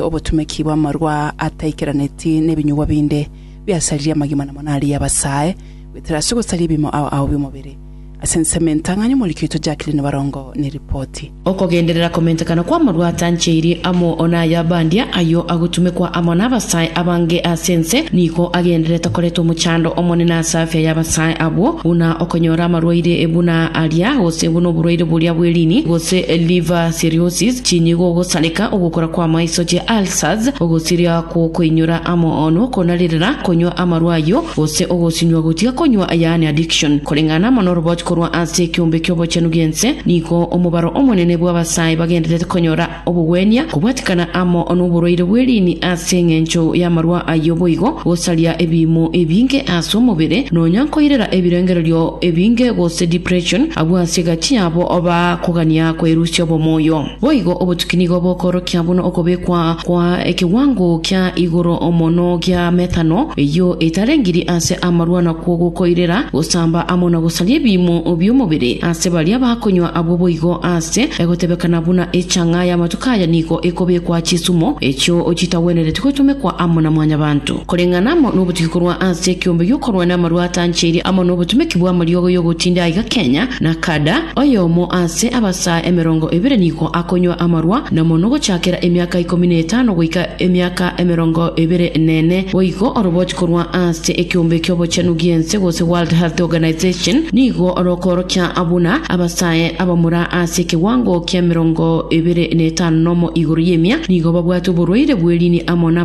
Obotumeki bw'amarua ataikeraneti nebinyugwa binde biasaririe amagima na monari y'abasae, goetera ase ogosaria ebiimo ao ao bi'omobere. Ase ensemo entang'ani omorikitwe Jacqueline Barongo neripoti. Okogenderera komentekana kw'amarua atancheirie amo naye abandia, ayio agotumekwa amo nabasae abange ase ense, nigo agendererete koreta omochando omonene ase afya y'abasae abwo, buna okonyora amarwaire buna aria, gose buna oborwaire boria bw'eriini, gose liver psoriasis, chinyigo, ogosareka, ogokora kw'amaiso, chi ulcers, ogosiria gw'okoinyora amo no konarirera, konywa amarwa ayio, gose ogosinywa gotiga konywa, yaani addiction. Koreng'ana amo n'orobochi korwa ase ekeombe ki'obochenu gi'ense, nigo omobaro omonene bw'abasae bagendererete konyora obogwenia, kobwatikana amo n'oborwaire bw'eriini ase eng'encho y'amarwa ayio boigo, gosaria ebiimo ebinge ase omobere, nonya nkoirera ebirengererio ebinge gose depression, abwo ase egati. Tiabo oba kogania kwerusia obomoyo. Boigo obotuki nigo bokorokia buna okobekwa kwa ekewango kia igoro mono gia metano, eyio etarengiri ase amarwa nakwo gokoirera gosamba amo na gosaria ebiimo bi'omobere ase baria bakonywa abwo boigo ase egotebekana buna echang'a y'amatuko aya nigo ekobekwa chisumo echio chitagwenereti gotomekwa amo na Mwanyabanto. koreng'ana amo nobotugi korwa ase ekeombe gi'okorwana amarwa atancheirie amo nobotumeki bw'amariogo y'ogotinda aiga Kenya na Kada. Oyomo ase abasaa emerongo ebere nigo akonywa amarwa namo nogochakera emiaka ikomi na etano goika emiaka emerongo ebere nene. Boigo oroboti korwa ase ekeombe ki'obochenu gi'ense gose World Health Organization nigo rokoorokia buna abasae abamura ase ekewango ki'emerongo ebere na etano nomo igoro y'emia nigo babwate oborwaire bw'eriini amo na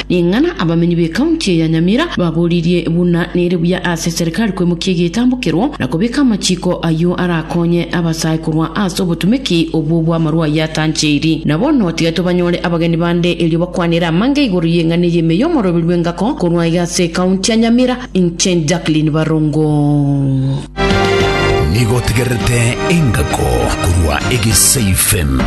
Ring'ana abamenyi b'ekaunti ya Nyamira baboririe buna nere buya ase serikali kwemokia egetambokero na kobeka amachiko ayio arakonye abasae korwa ase obotumeki obwo bw'amarwa ayio atancheiri. Na bono tiga tobanyore abageni bande erio bakwanere amanga igoro y'eng'ana ey'ime y'omoroberio bw'engako korwa iga ase ekaunti ya Nyamira. Inche Jacqueline Barongo. Nigo otegererete engako korwa egesaifem.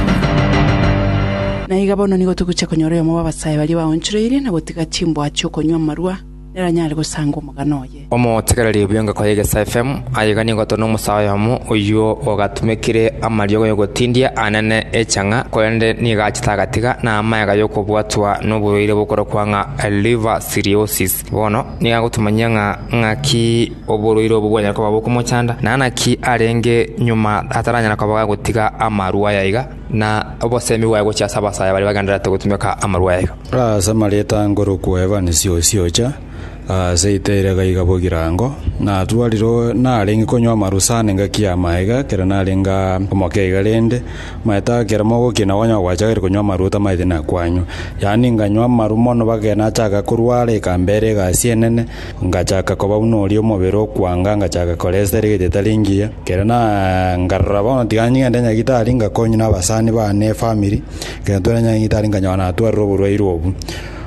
Na iga bono nigo togochia konyora oyomo bw'abasae baria baonchoreirie na gotiga chimboa chi'okonywa amarua, neranyare gosanga omogano oye. Omotegereri bw'engako y'egesaifem aiga nigo tore nomosae oyomo oyio ogatumekire amariogo y'ogotindia anene echang'a, korende nigo achete agatiga, na amagega y'okobwatwa noborwaire bokorokwa ng'a liver cirrhosis. Bono nigo agotomanyia ng'a ng'aki oborwaire obwo bwanyare koba bokomochanda, na naki arenge nyuma ataranyara koba gagotiga amarwa aya iga, na obosemi bwaye gochia ase abasaae baria bagendererete gotumeka amarwa aya iga. Ase amareta nkorokwa Evans Siosiocha, ase Itaira gaiga Bogirango, natwarire narenge konywa amarusana engaki ya maega ekero narenge aa omoke iga rende, Maete ekero mogokina konya gwachakire konywa amaruta maete na kwanywa. Yaani nkanywa amaru mono mpaka nachaka korwara ekamba ere egasi enene, nkachaka koba buna oria omobere okwanga, nkachaka koresta ere egete etari engiya. Ekero na nkarora bono tiga ngende nyagitari nkakonywa nabasani bane efamiri, ekero ntwarire nyagitari nkanyora natwarire oborwaire obu.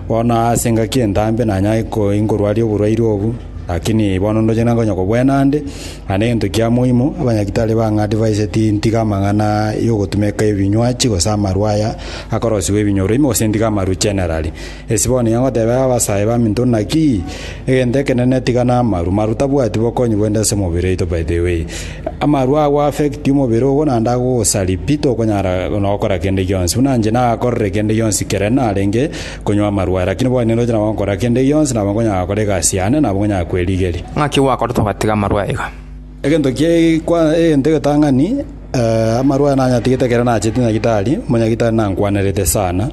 Bono ase engaki entambe nanyare ko nkorwaria oborwaire obu, lakini bono ndoche nonye konya kobwena ande. Na negento kia moimo, abanyagitari ba ng'a divaise tintiga amang'ana y'ogotumeka ebinywachi gose amarwa aya akorosigwa ebinyoro ime gose ntiga amarwa generally. Ase bono nigo ngotebera abasae baminto naki egento ekenene tiga namarwa. Marwa tabwati bokonyi bwende ase emebere yaito by the way. Amarwa ago affect omobere ogo naende agogosaria pi tokonyara nokora kende gionsi. Buna inche nagakorire kende gionsi kere narenge konywa amarwa, lakini bono nindoche nabo nkora kende gionsi, nabo nkonyara gokora egasi yane, nabo nkonyara kwerigeria. Ng'aki gwakorete ogatiga amarwa iga? Egento kie kwa egento egetang'ani, eh, amarwa nanyatigete ekero nachete nyagitari, monyagitari nankwanerete sana,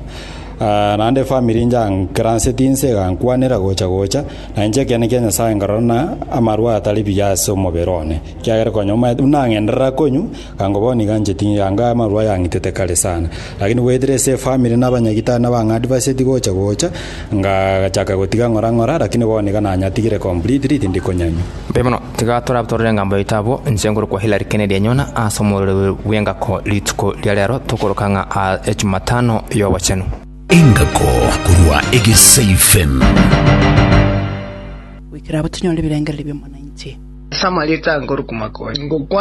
ah, naende efamiri inchankeranseti inse egankwanera gocha gocha, na inche ekiagera kia Nyasaye nkarora ng'a amarwa atari buya ase omobere one, ekiagera konya omaete buna ng'enderera konywa, Ango bono nigo ancheti anga amarwa ayang'itete kare sana. Lakini goetera ase efamiri na abanyagitari nabo ang'a adviseti gocha gocha, ngachaka gotiga ng'ora ng'ora, lakini bono nigo nanyatigire completely tindi konyanywa. Mbuya mono, tiga torabatorere engambo yaito abwo. Inche ngorokwa Hilary Kennedy Enyona ase omorero bw'engako rituko ria rero tokoroka ng'a aa Echumatano y'obochenu. Engako korwa Egesii Fm. Goikera abwo tonyore ebirengererio bi'omwananchi. Ase amarieta ankorokwa Makonyi.